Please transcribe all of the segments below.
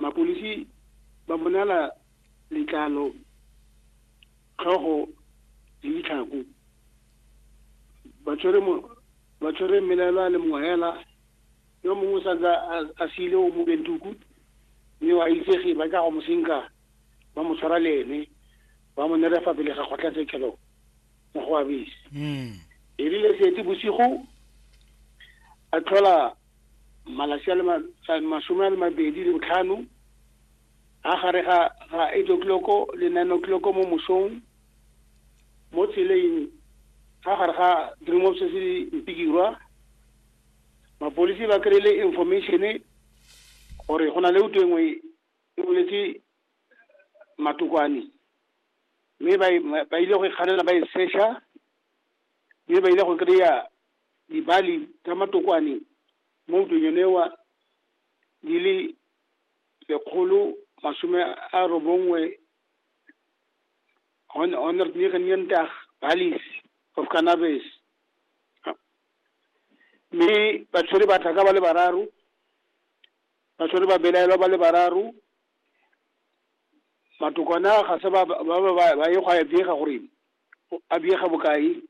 Mapodisi ba bonala letlalo, tlhogo le ditlhako. Ba tshwere mo ba tshwere mmelaelwa le mongwe hela yo mongwe o santse a siile o mo bentuku mme wa itsege ba tla go mo senka ba mo tshwara le ene ba mo nere fa pele ga kgotlatshekelo mo go abese. Mm. Erile setse bosigo a tlhola malatsi a le masome a le mabedi le botlhano a gare ga ga eight o'clock le nine o'clock mo mosong mo tseleng ga gare ga dream of se se mpikirwa mapolisi ba kry-ile information gore go na le uto engwe e boletse matokwane mme ba ile go e kganela ba e sesha mme ba ile go kry-a Dibali tsa matokwane mo ntweng yone wa di le lekgolo masome a robongwe hon- honor Nierendag Balis of Cannabis. Mme batshwere ba tlhaka ba le bararo, batshwere ba belaelwa ba le bararo, matokwane a ga se ba ba ba ba ba ye go a bega gore a bega bokae.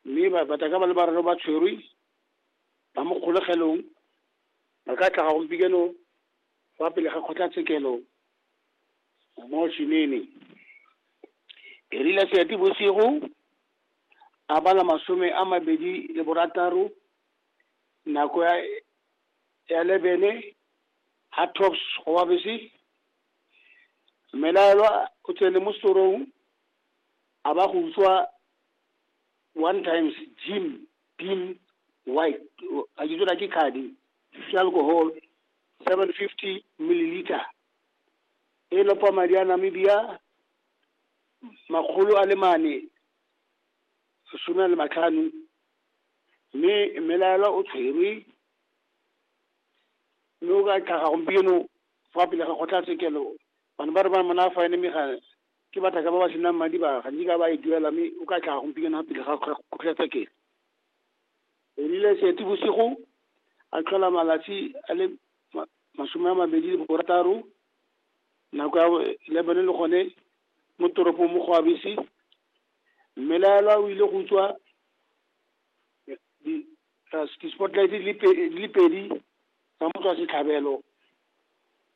Mme ba batla ka ba le bararo ba tshwerwe ba mo kgolegelong ba ka tlhaga gompieno fa pele ga kgotlatshekelo mo Shinene. Erile seati bosigo a bala masome a mabedi le borataro nako ya ya lebene ha tops go wa bese mmelaelwa o tsene mo setorong a ba go utswa one times gym beam white a ke tsona ke khadi se alcohol seven fifty milliliter e lopa madi a namibia makgolo a le mane sesome a le matlhano mme mmelaela o tshwerwe mme o ka tlhaga gompieno fa pele ga kgotlatshekelo bana ba re ba mona fa ene mme ga ke batlhaka ba ba senang madi ba ga nkitla ba e duela mme o ka tlhaga gompieno ga pele ga kgotlatshekelo e rile seti bosigo a tlhola malatsi a le masome a mabedi le borataro nako ya le bone le gone mo toropong mo go abese mme laelwa o ile go tswa di-spotlight di le pedi tsa motswa setlhabelo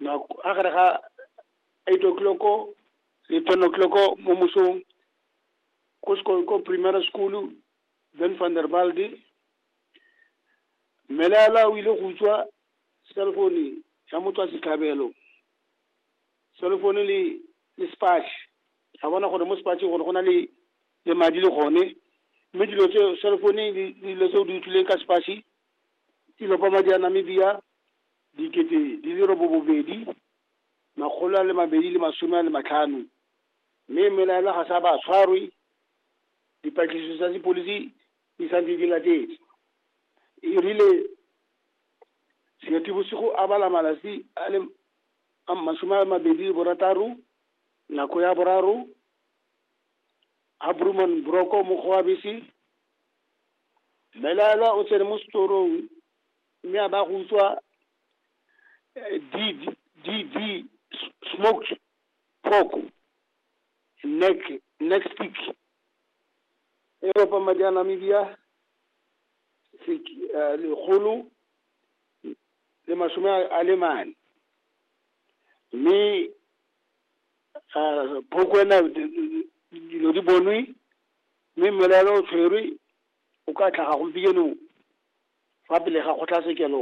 nako a gare ga eight o'clock le ten o'clock mo mosong ko sekolo ko primary school ben van der balde mmelela o ile go utswa cellphone ya motswa setlhabelo cellphone le le spatch a bona gore mo spatch gore go na le le madi le gone mme dilo tse cellphone le dilo tse o di utlwileng ka spatch di lopa madi a namibia dikete di le robobobedi, makgolo a le mabedi le masome a le matlhano. Mme mmelaelwa ga sa ba a tshwarwe, dipatlisiso tsa sepodisi di santse di latetse. E rile Seetebosigo a bala malatsi a le masome a mabedi le borataro, nako ya boraro, ha Brooman Boroko mokgwa wa bese, mmelaelwa o tsene mo setorong mme a ba go utswa eh, DV, DV s- smoked pork neck neck stick e ropa madi a Namibia sek- eh, lekgolo le masome a a le mane mme ah, phoko ena di- di- dilo di bonwe Mme mmelaelwa o tshwerwe o ka tlhaga gompieno fa pele ga kgotlatshekelo.